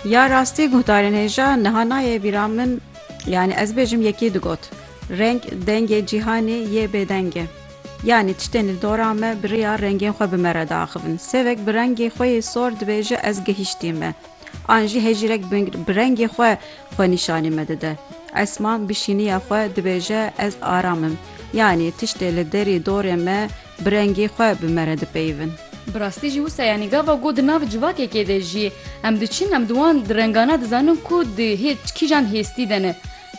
Ya rastî guhdarên hêja niha nayê bîra min yanî ez bêjim yekî digot reng dengê cîhanê yê bêdeng e. Yanî tiştên li dora me bi riya rengên xwe bi me re diaxivin. Sêvek bi rengê xwe yê sor dibêje ez gihîştî me. An jî hejîrek bi rengê xwe xwe nîşanî me dide. Esma bi şîniya xwe dibêje ez aram im. Yanî tiştê li derî dorê me Bi rengê xwe bi me re dipeyivin. Bi rastî jî wisa yanî gava ku di nav civakekê de jî em diçin em di wan di rengana dizanin ku di hê kîjan hêstî de ne.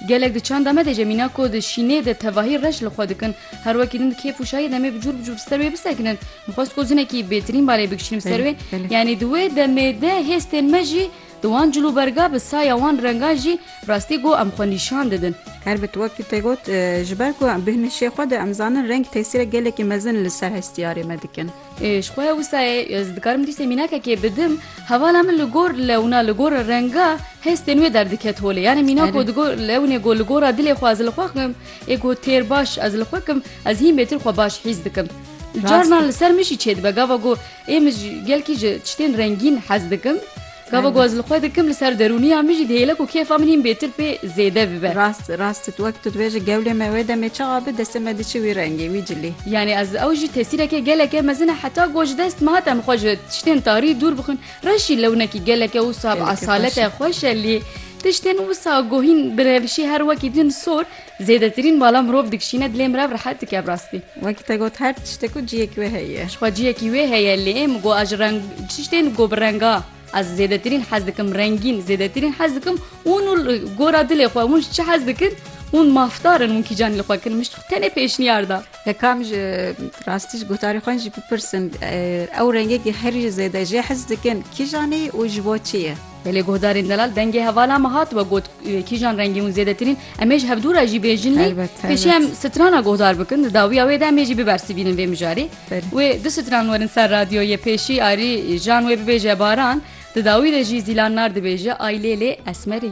Gelek di çanda me de jî em mîna ku di şînê de tevahî reş li xwe dikin. Her wekî din di kêf û şahî demê bi cûr bi cûr ser wê bisekinin. Dixwest ku zinekî bêtirîn balê bikişînim ser wê. Yanî di wê demê de hêstên me jî. Di wan cilûberga bi saya wan rengan jî rastî ku em xwe nîşan didin. Herbert wekî te got, ji ber ku em bêhnişê xwe de em zanin reng tesîrek gelekî mezin li ser hestiyarê me dikin. Ji xwe ya wisa e ez dikarim dîsê mînakekê bidim. Hevala min li gor lewna, li gor renga hestên wê derdiket holê. Yanî mînak ku digot lewnê ku li gora dilê xwe ez li xwe kim ê ku têr baş ez li xwe kim ez hîn bêtir xwe baş hîs dikim. Carnan li ser min jî çêdibe gava ku Ê min ji gelkî ji tiştên rengîn hez dikim. Gava ku ez li xwe dikim li ser derûniya min jî dihêle ku kêfa min hîn bêtir pê zêde bibe. Rast rast wek tu dibêjî gewlê me wê demê çawa be destê me diçi wî rengê, wî cilî. Yanî ez ew jî tesîreke geleke mezin e heta ku ji dest me hat em xwe ji tiştên tarî dûr bixin. Reş jî lewnekî geleke wisa bi esalet e xweş e lê tiştên wisa ku hîn bi revişî her wekî din sor, Zêdetirîn bala mirov dikişîne dilê mirav rehet dike bi rastî. Wekî te got her tiştek û ciyekî wê heye. Jixwe ciyekî wê heye lê min got ez ji reng tiştên got bi renga ez zêdetirîn hez dikim rengîn zêdetirîn hez dikim hûn û li gora dilê xwe hûn ji çi hez dikin hûn mafdar in hûn kîjan li xwe kirin min ji xwe tenê pêşniyar da. Yekam ji rastî ji gotarê xwe jî bipirsin ew rengekî herî zêde jê hez dikin kîjan e û ji bo çi ye. Belê guhdarên delal dengê hevala me hat we got kîjan rengê hûn zêdetirîn em ê ji hevdû re jî bêjin lê pêşî em strana guhdar bikin di dawiya wê de em ê jî bibersivînin vê mijarê wê du stran werin ser radyoyê pêşî arî jan wê bibêje baran di dawî de jî zîlan nar dibêje ay lê lê esmerê.